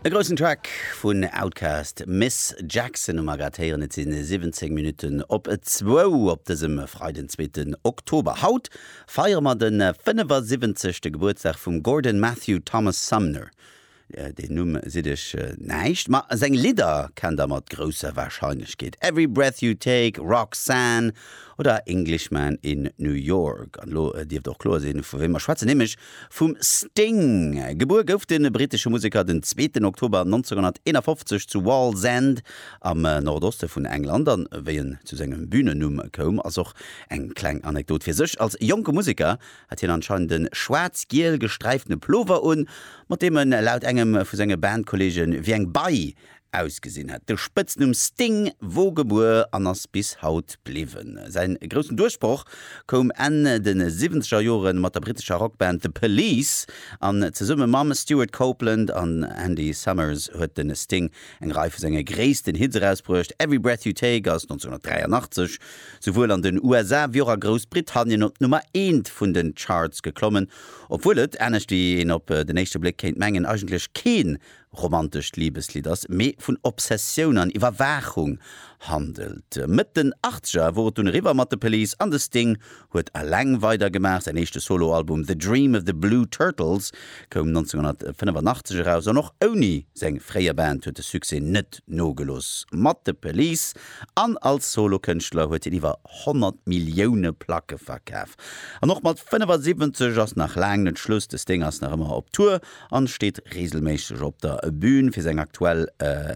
E groussen Track vun Outkast, Miss Jackson hu mer grad héieren. Et si 17 Minutten op zwou op dësem Freiden, den zweeten Oktober. Haut feiere mer den 75. Gebuertsdag vum Gordon Matthew Thomas Sumner. Deen Numm sidd iech näischt, ma seng Lidder kennt der mat grousser Wahrscheinlechkeet, Every Breath You Take, Roxanne oder Englishman in New York. An elo dierft och kloer sinn, vu wéi mer schwätzen, nämlech Vum Sting. Gebuer gouf de brittesche Museker den zweeten Oktober 1951 zu Wallsend am Nordoste vun England, an wéi en zu sengem Bühnennumm koum ass och eng kleng Anekdot fir sech. Als jonke Museker hat hien anscheinend e schwaarz-giel gesträiftene Plover un, mat deem en laut engem vu senge Bandkolleege wéi eng Bei Ausgesinn hat de Spëtznumm Sting wou gebuer an ass bis haut bliwwen. Säin groussen Duerchbroch koum Enn de siwwenzeger Joren mat der brittescher Rockband The Police an zesumme mam Stewart Copeland an Andy Summers huet de Sting eng Rei vu senge gréissten Hits erausbruecht. Every Breath You Take ass 1983 souwuel an den USA wéi och a Groussbritannien op d'Nummer eent vun den Charts geklommen, obwuel et, anescht wéi een op den éischte Bléck kéint mengen, eigentlech keen romantescht Libeslidd ass, mee vun Obsessioun an Iwwerwaachung handelt. Mëtt den Achtzeger wor et dunn eriwwer mat The Police an de Sting huet eleng weidergemaach. Säin éischte Solo-Album The Dream of the Blue Turtles koum 1985 eraus an och ouni seng fréier Band huet de Succès net nogelooss mat The Police an als Solokënschtler huet hien iwwer 100 Millioune Placke verkaf. An och mat 75 ass nach laang net Schluss, de Sting ass nach ëmmer op Tour an steet reegelméisseg op der Bühn fir seng aktuell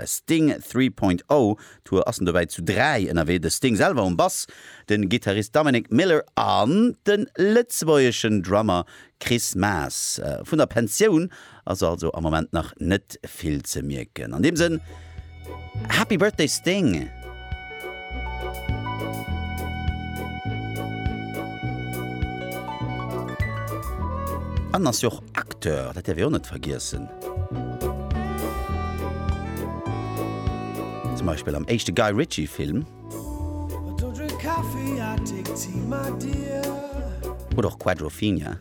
Sting 3.0 Tour. Ass en dobäi zu 3 ënnerwee, de Sting selwer um Bass, den Gittarist Dominic Miller an den lëtzebuergeschen Drummer Chris Maas. Vun der Pensioun ass also am Moment nach net vill ze mierken. An deem Sënn. Happy Birthday Sting! En ass jo och Acteur, dat däerf ee och net vergiessen. Zum Beispill am éischte Guy Ritchie Film. Oder och Quadrophenia.